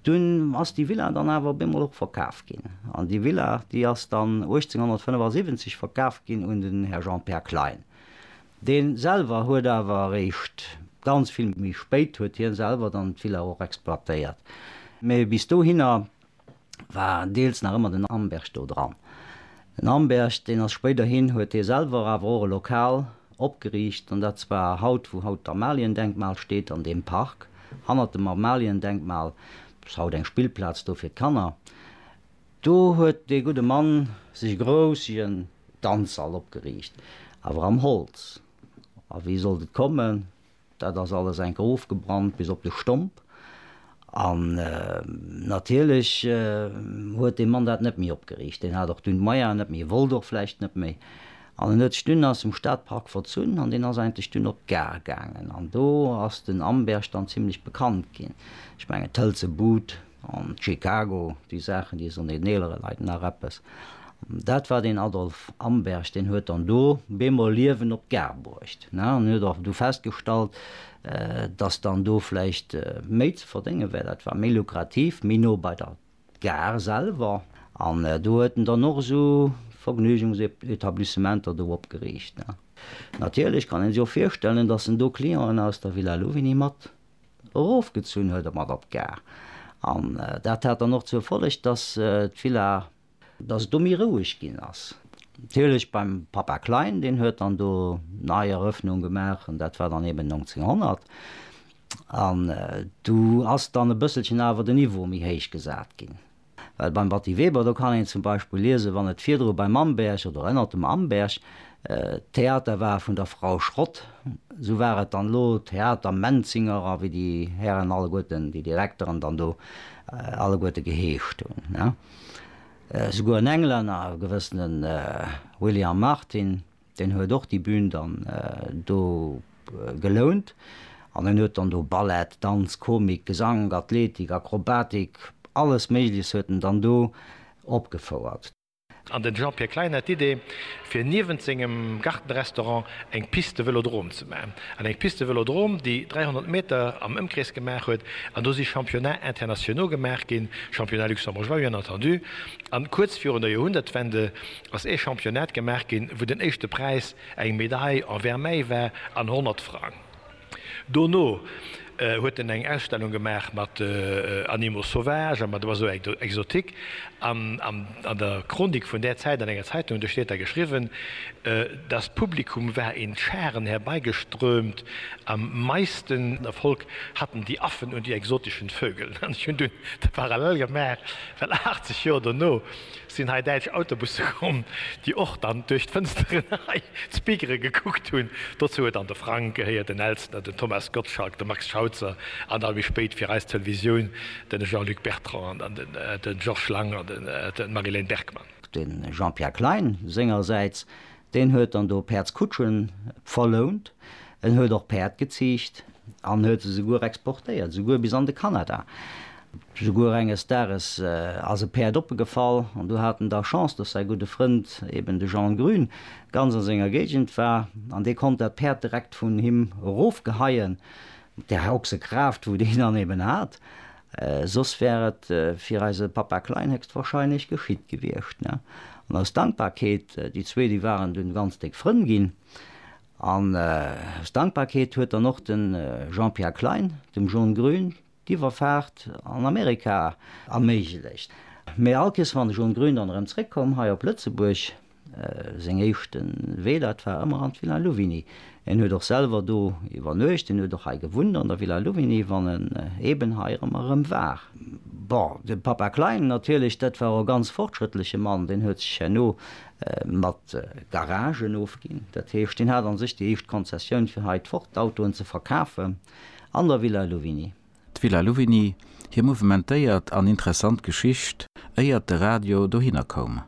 Dunn ass déi Villa dann awer op eemol och verkaf ginn. An déi Villa, déi ass dann 1875 verkaf ginn un den Här Jean-Pär Klein. Dee selwer huet awer eréischt ganz vill méi spéit, huet hie selwer dann d'Villa och exploitéiert. Mee bis dohinner war deels nach ëmmer den Amberg do dran. Den Amberg, deen ass spéiderhin, huet hie selwer awer och e Lokal opgeriicht, an dat zwar haut, wou haut d'Amaliendenkmal steet, an deem Park hannert dem Amaliendenkmal. Dat ass haut eng Spillplaz do fir d'Kanner. Do huet dee gudde Mann sech e groussegen Danzsall opgeriicht, awer am Holz. A wéi sollt et kommen? Dat ass alles enker ofgebrannt bis op de Stomp. An natierlech huet dee Mann dat net méi opgeriicht. Deen hat och dunn d'Meier net méi, e wollt och vläicht net méi. An en huet sech dunn aus dem Stadpark verzunn an deen ass eigentlech dunn op d'Gare gaangen. An do ass den Amberg dann zimlech bekannt ginn. Ech mengen d'Hëlze Bud. An Chicago, déi Saachen, déi soen den eelere Leit nach eppes. Dat war den Adolf Amberg, deen huet dann do bemol Liewen op d'Gare bruecht an huet och du festgestallt, datt dann do vläicht méi ze verdénge wär. Dat war méi lukrativ, méi no bei der Gare selwer. An do huet en dann och esou Vergnügungsetablissementer do opgeriicht. Natierlech kann ee sech och virstellen, datt en do Clienten aus der Villa Louvigny mat Erofgezunn huet e mat op d'Gare an dat hat dann och zur Folleg, dass d'Villa. Dass et do méi roueg ginn ass. Natierlech beim Papa Klein, deen huet dann do nei Erëffnung gemaach an dat war dann eben 1900 an du ass dann e bësselchen awer de Niveau méi héich gesat ginn. Well beim Batty Weber, do kann een zum Beispill liesen, wann et virdru beim Amberg oder ënnert dem Amberg d'Theater war vun der Frau Schrott, esou war et dann elo Theater Menzinger a wéi déi Hären alleguerten, déi Direkteren dann do alleguerte geheescht hunn. Esouguer en Englänner, e gewëssene William Martin, Deen huet och déi Bühn dann do gelount an en huet dann do Ballett, Danz, Komik, Gesank, Athletik, Akrobatik, alles Méigleches huet en dann do opgefouert. An den Jean-Pierre Klein hat d'Idee, fir niewent sengem Gartenrestaurant eng Piste Vëlodrom ze maachen. An eng Piste Vëlodrom, déi 300 Meter am Ëmkrees gemaach huet. An do si Championnats internationaux gemaach ginn, Championnats luxembourgeois, bien entendu. An kuerz virun der Joerhunnertwende ass ee Championnat gemaach ginn, wou den éischte Präis eng Medail en Vermeil war an 100 Frang. Dono huet en eng Ausstellung gemaach mat Animaux sauvages a mat Oiseaux exotiques. An an der Chronik vun där Zäit an enger Zeitung huet de Steter geschriwwen, Das Publikum war in Scharen herbeigeströmt, am meisten Erfolg hatten die Affen und die exotischen Vögel. An ech hunn dunn de Parallel gemaach, well 80 Joer dono, Sinn hei däitsch Autobusse komm, déi och dann duerch d'Fënsteren hei zu Bigeren gekuckt hunn. Dozou huet dann de Frank gehéiert, den Elstner, den Thomas Gottschalk, de Max Schauzer an da méi spéit fir eis Televisioun de Jean-Luc Bertrand an den Georges Lang an d'Marie-Léne Bergmann. De Jean-Pierre Klein sengersäits, deen huet dann do Päerdskutschen verlount, en huet och Päerd geziicht an huet se souguer exportéiert, souguer bis an de Kanada. Souguer enges Dages ass e Päerd oppegefall an du hat en da Chance, dass säi gudde Frënd, eben de Jean Grün, ganz a senger Géigend war an dee konnt dat Päerd direkt vun him erofgeheien, mat där Ochsekraaft, wou deen dann eben hat. Soss wär et fir eise Papa Klein héchstwahrscheinlech geschitt gewiescht. An aus Dankbarkeet, déi zwee, déi waren dunn ganz déck Frënn ginn, an aus Dankbarkeet huet dann och de Jean-Pierre Klein dem John Grün d'Iwwerfaart an Amerika erméiglecht. Mee all Kees wann ech um Grün dann erëm zréck komm hei op Lëtzebuerg, seng éischte Wee dat war ëmmer an d'Villa Louvigny. En huet och selwer do iwwernuecht, en huet och hei gewunnt an der Villa Louvigny wann en eeben hei erëm erëm war. Bon, de Papa Klein natierlech, dat war och e ganz fortschrëttleche Mann, deen huet sech herno mat Garagen ofginn, dat heescht deen hat an sech déi éischt Konzessioun fir hei d'Ford-Autoen ze verkafen. an der Villa Louvigny. D'Villa Louvigny, hir mouvementéiert an interessant Geschicht, éiert de Radio dohinner koum.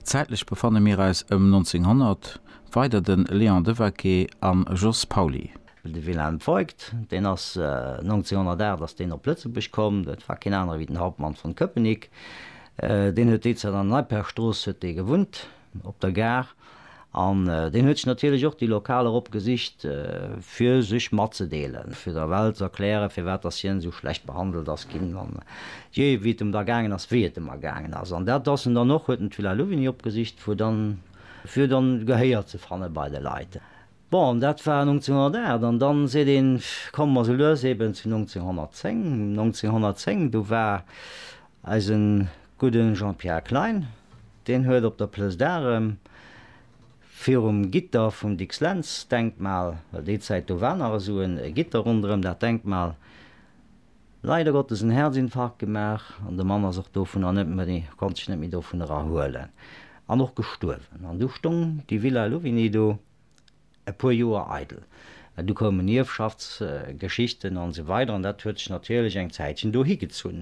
Zäitlech befanne mir eis ëm 1900, weider de Léon Devaquet an Jos Pauly. De Wilhelm Voigt, deen ass 1908 ass deen op Lëtzebuerg komm, dat war keen anere wéi den Hauptmann von Köpenick, deen huet déizäit an der Neippergstrooss huet dee gewunnt. op der Gare, an deen huet sech natierlech och déi Lokaler opgesicht, fir sech matzedeelen, fir der Welt z'erklären, firwat dass hien esou schlecht behandelt ass ginn, an je wéi et em da gaangen ass, wéi et em ergaangen ass. An dat ass en dann och, huet en d'Villa Louvigny opgesicht, fir dann, fir dann Gehéier ze fanne bei de Leit. Bon, dat war 1908 an dann seet een, komme mer sou lues eben zu 1910. 1910, do war eise gudde Jean-Pierre Klein, deen huet op der Place d'Arm virum Gitter vum Dicks-Lentz-Denkmal, well déi Zäit do war nach esou e Gitter ronderëm dat Denkmal, Leider Gottes en Herzinfarkt gemaach an de Mann ass och dovunner net méi, konnt sech net méi dovun erahuelen an och gestuerwen. An du stoung déi Villa Louvigny do e puer Joer eidel. Du koumen Ierfschaftsgeschichten an esou weider an dat huet sech natierlech eng Zäitchen do higezunn.